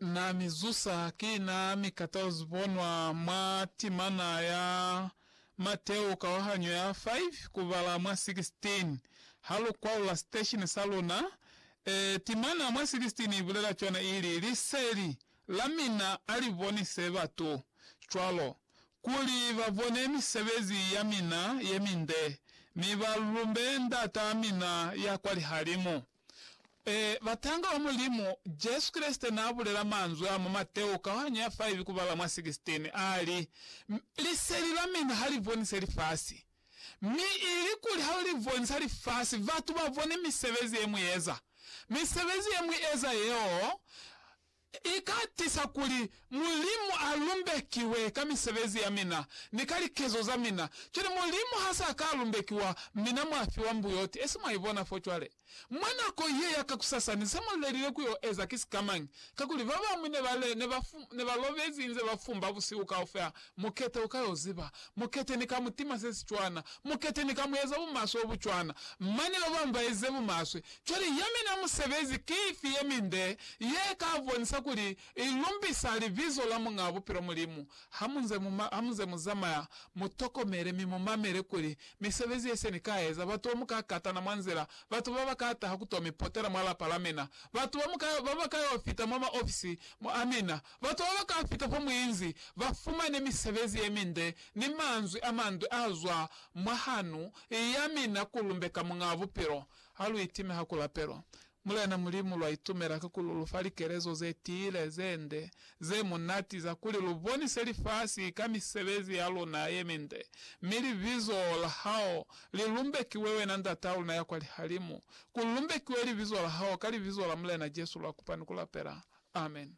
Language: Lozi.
Na mi zusa, ki na mi kata uzi bonwa mwa timana ya Mateo kawahanyo ya 5 kubala mwa 16. Ha lu kwaula siteshini sa luna, e, timana mwa 16 i bulela cwana ili, Liseli la mina a li bonise batu, cwalo kuli ba bone misebezi ya mina ye minde, mi ba lumbe Ndat'a mina ya kwa lihalimu. Ee, batanga ba Mulimu. Jesu Kreste n'a bulela manzwi a mwa Mateo kaohanyo ya 5 kubala mwa 16, a li, Liseli la mina ha li bonise lifasi. Mi ilikuli ha li bonisa lifasi, batu ba bone misebezi ye mu eza. Misebezi ye mu eza yeo, I ka tisa kuli Mulimu a lumbekiwe ka misebezi ya mina ni ka likezo za mina. Cwale Mulimu ha sa ka lumbekiwa, mina mwa fiwa mbuyoti. Esi mwa ibona fo cwale. Mwa nako ye ya kakusasani, se mu lelile ku yo eza ki sikamañi? Kakuli, babamwi ne ba le, ne ba, ne ba lobezi inze ba fumba busihu kaufela, Mukete u ka yo ziba. Mukete ni ka mu tima se si cwana. Mukete ni ka mu eza bumaswe obu cwana. Mane ba bañwi ba ezize bumaswe. Cwale ya mina musebezi ki ifi ye minde ye ka bonisa kuli i lumbisa libizo la Muñaa Bupilo Mulimu? Ha mu nze mu, ha mu nze mu zamaya, mu tokomele mi mu mamele kuli misebezi ye se ni ka eza, batu ba mu ka katana mwa nzila, batu ba ba ka taha ku to mi potela mwa lapa la mina, batu ba mu ka, ba ba ka yo fita mwa maofisi a mina, Batu ba ba ka fita fa muinzi ba fumane misebezi ye minde ni manzwi a mande a zwa mwa hanu ya mina ku lumbeka Muñaa Bupilo. Ha lu itime ha ku lapelwa Mulena Mulimu, lwa itumela ka kuli u lu fa likelezo ze tiile, ze nde, ze munati za kuli lu bonise lifasi ka misebezi ya luna ye minde, mi libizo la hao li lumbekiwe, wena Ndataa luna ya kwa lihalimu. Ku lumbekiwe libizo la hao ka libizo la Mulena Jesu lwa kupa ni ku lapela. Amen.